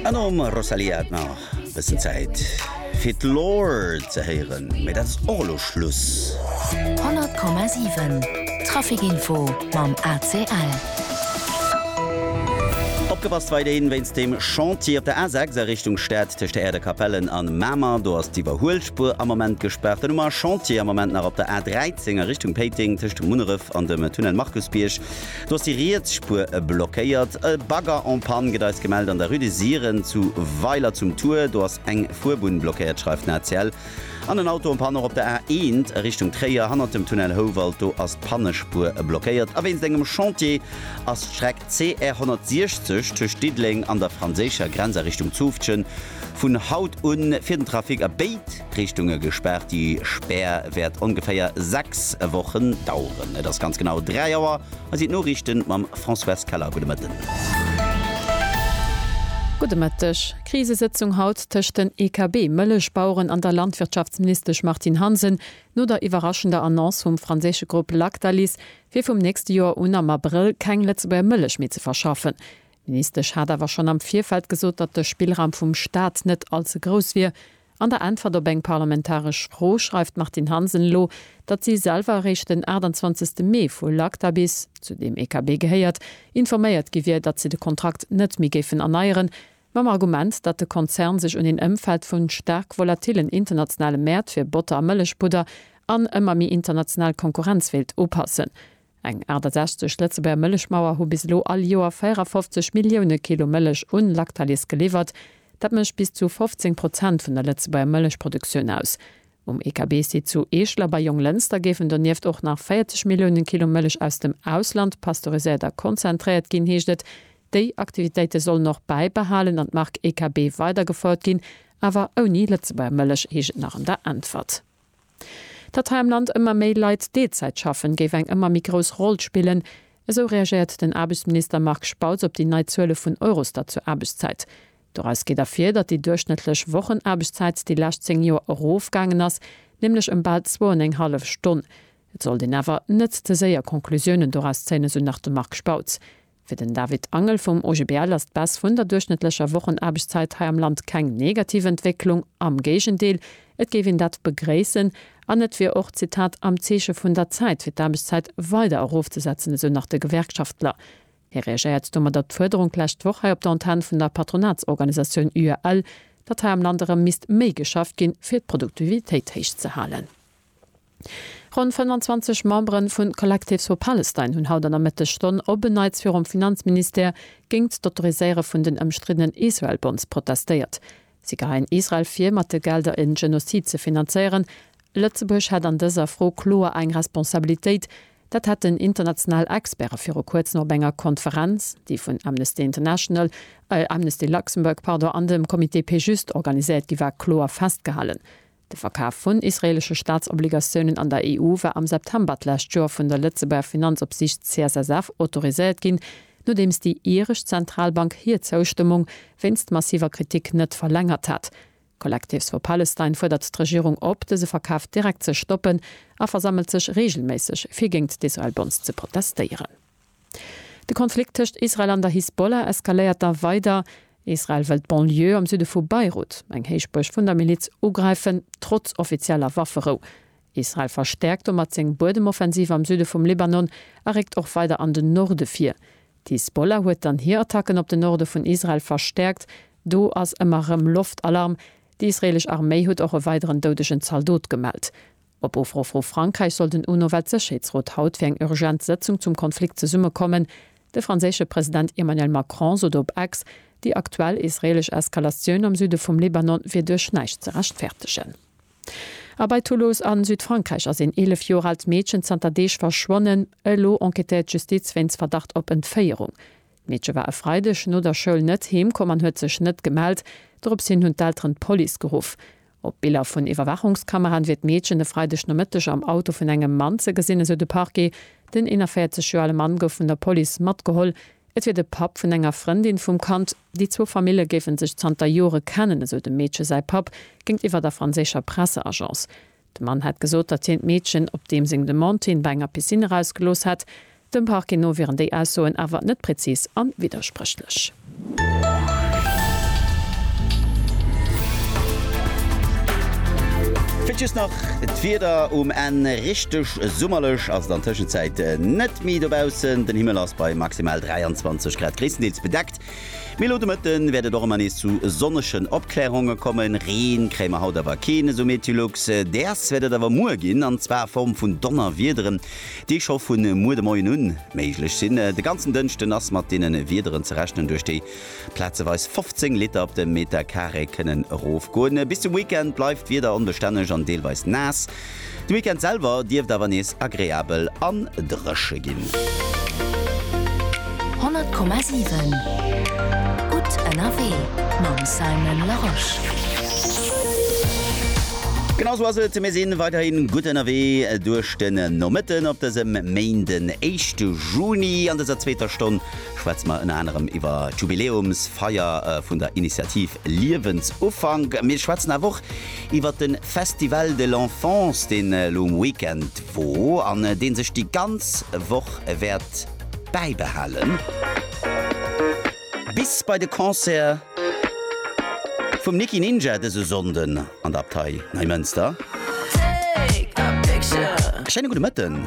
An nom Rosalía hat nach e bëssen Zäit fir d'Lore ze héieren, mee dat ass och elo Schluss. 100,7 Trafic Info mam ACL. Opgepasst, weiderhin wéinst dem Chantier op der A6 a Richtung Stad tëscht der Aire de Capellen an Mamer. Do ass d'Iwwerhuelspuer am Moment gespaart. Dann hu mer Chantier am Moment nach op der A13 a Richtung Péiteng tëscht Munneref an dem Tunnel Markusbierg. Do ass déi riets Spuer blockéiert. E Bagger en panne gëtt eis gemellt an der Rue des Siren zu Weiler zum Tour. Do ass eng Fuerbunn blockéiert, schreift den ACL. An en Auto en panne och op der A1 a Richtung Tréier hannert dem Tunnel Houwald. Do ass d'Pannespuer blockéiert. A wéinst engem Chantier ass d'Streck CR 160 tëscht Diddeleng an der franséischer Grenz a Richtung Zoufftgen vun haut un fir den Trafic a béid D'Richtunge gespaart, déi Spär wäert ongeféier 6 Wochen daueren. Et ass ganz genau 3 Auer. Hei sinn d'Noriichten mam Françoise Keller. Gudde Mëtten. Gudde Mëtteg. Krisesëtzung haut tëscht den EKB, Mëllechbaueren an der Landwirtschaftsministesch Martine Hansen, no der iwwerraschender Annonce vum franséische Grupp Lactalis, fir vum nächste Joer un am Abrëll keng Lëtzebuerger Mëllech méi ze verschaffen. D'Ministesch hat awer schonn am Virfeld gesot, datt de Spillraum vum Staat net all ze grouss wier. An der Äntwert op eng parlamentaresch Fro schreift d'Martine Hansen elo, datt si selwer eréischt den 28 Mee vu Lactalis, zu deem EKB gehéiert, informéiert gi wier, datt si de Kontrakt net méi géifen erneieren, mam Argument, datt de Konzern sech un een Ëmfeld vu staark volatillen internationale Mäert fir Botter a Mëllechpudder an ëmmer méi international Konkurrenz wéilt upassen. Eng 68 Lëtzebuerger Mëllechmauer hu bis elo all Joer 54 Millioune Kilo Mëllech un Lactalis geliwwert. Dat mécht bis zu 15 Prozent vun der Lëtzebuerger Mëllechproduktioun aus. Um EKB-Site zu Eeschler bei Jonglënster géifen donieft och nach 40 Millioune Kilo Mëllech aus dem Ausland pasteuriséiert a konzentréiert ginn, heescht et. Déi Aktivitéite sollen och bäibehalen an d'Mark EKB weidergefouert ginn, awer ouni Lëtzebuerger Mëllech, heescht et nach an der Äntwert. Datt hei am Land ëmmer méi Leit Deelzäit schaffen, géif eng ëmmer méi grouss Roll spillen. Esou reagéiert den Aarbechtsminister Marc Spautz op déi nei Zuele vun Eurostat zur Aarbechtszäit. Doraus geet ervir, datt déi duerchschnëttlech Wochenaarbechtszäit déi lescht 10 Joer erofgaangen ass, nämlech ëm bal zwou an eng hallef Stonn. Et sollt een awer net ze séier Conclusiounen doraus zéien, esou nach de Marc Spautz. Fir den David Angel vum OGBL ass d'Baisse vun der duerchschnëttlecher Wochenaarbechtszäit hei am Land keng negativ Entwécklung, am Géigendeel, et géif een dat begréissen an et wier och, Zitat, am Zeeche vun der Zäit fir d'Aarbechtszäit weider erofzesetzen, esou nach de Gewerkschaftler. Hie reagéiert domat op d'Fuerderung d'lescht Woch hei op der Antenn vun der Patronatsorganisatioun UAL, datt hei am Land erëm misst méi geschafft ginn, fir d'Produktivitéit héich ze halen. Ronn 25 Memberen vun Collectives for Palestine hunn haut an der Mëttegstonn op en Neits virum Finanzministère géingt d'Autoriséiere vun den ëmstriddenen Israel Bonds protestéiert. Si geheien Israel vir, mat de Gelder en Genozid ze finanzéieren. Lëtzebuerg hätt an dëser Fro kloer eng Responsabilitéit. Dat hätten international Experte viru kuerzem op enger Konferenz, déi vun Amnesty International, Amnesty Luxembourg, pardon, an dem Comité Péjuste organiséiert gi war, kloer festgehalen. De Verkaf vun israeelesche Staatsobligatiounen an der EU war am September d'lescht Joer vun der Lëtzebuerger Finanzopsiicht CSSF autoriséiert ginn, nodeems déi iresch Zentralbank hir Zoustëmmung wéinst massiver Kritik net verlängert hat. Collectives for Palestine fuerdert d'Regierung op, dëse Verkaf direkt ze stoppen a versammelt sech reegelméisseg, fir géint d'Israel-Bonds ze protestéieren. De Konflikt tëscht Israel an der Hisbollah eskaléiert da weider. Israel wëll d'Banlieue am Süde vu Beirut, eng Héichbuerg vun der Miliz, ugräifen, trotz offizieller Wafferou. Israel verstäerkt domat seng Buedemoffensiv am Süde vum Libanon a réckt och weider an den Norde vir. D'Hisbollah huet dann hir Attacken op den Norde vun Israel verstäerkt. Do ass ëmmer erëm Loftalarm. Déi israeelesch Arméi huet och e weideren doudegen Zaldot gemellt. Op Ufro vu Frankräich soll den UNO-Weltsécherheetsrot haut fir eng urgent Sëtzung zum Konflikt zesummekommen. De franséische President Emmanuel Macron sot op Ex, déi aktuell israeelesch Eskalatioun am Süde vum Libanon wier duerch näischt ze rechtfertegen. A bei Toulouse a Südfrankräich ass een 11 Joer aalt Meedchen zanter Deeg verschwonnen. Elo enquêtéiert d'Justiz wéinst Verdacht op Entféierung. D'Meedche war e Freideg no der Schoul net heem komm an huet sech net gemellt. Dorops hin hunn d'Elteren d'Police geruff. Op Biller vun Iwwerwaachungskameraen wier d'Meedchen e Freidegnomëtteg am Auto vun engem Mann ze gesinn, esou de Parquet. Den 41 Joer ale Mann gouf vun der Police matgeholl. Et wier de Papp vun enger Frëndin vum Kand. Déi zwou Famille géife sech zanter Jore kennen, esou dem Meedche säi Papp géintiwwer der franséischer Presseagence. De Mann hätt gesot, datt hien d'Meedchen op deem seng Demande hien bei enger Piscine erausgelooss hätt. Dem Parquet no wieren déi Aussoen awer net prezis a widderspréchlech. Vläit just nach d'Wieder um Enn, Richteg summerlech ass et an Tëschenzäit net méi dobaussen. Den Himmel ass bei maximal 23 Grad gréisstendeels bedeckt, mee elo de Mëtte wäert et och ëmmer nees zu sonnegen Opklärunge kommen. Ree kréie mer haut awer keen, esou Meteolux. Däers wäert et awer muer ginn, an zwar a Form vun Donnerwiederen. déi scho vu muer de Moien un méiglech sinn. De ganzen Dënschden ass mat deene Wiederen ze rechnen, duerch déi plazeweis 15 Liter op de Meter Carré kënnen erofgoen. Bis zum Weekend bleift d'Wieder onbestänneg an deelweis naass. De Weekend selwer dierft awer nees agreabel a dréche ginn. 100,7 gutt ënnerwee mam Simon Larosche. Genau sou ass et, mir si weiderhi gutt ënnerwee duerch. Den Nomëtten op dësem Méind, den éischte Juni. An dëser zweeter Stonn schwätze mer ënner anerem iwwer d'Jubiläumsfeier vun der Initiativ Liewensufank. Mir schwätzen awer och iwwer de Festival de l'Enfance, deen elo um Weekend wor an dee sech déi ganz Woch wäert bäibehalen. Bis bei de Concert vum Nicky Ninja dëse Sonnden an der Abtei Neimënster. Schéine gudde Mëtten.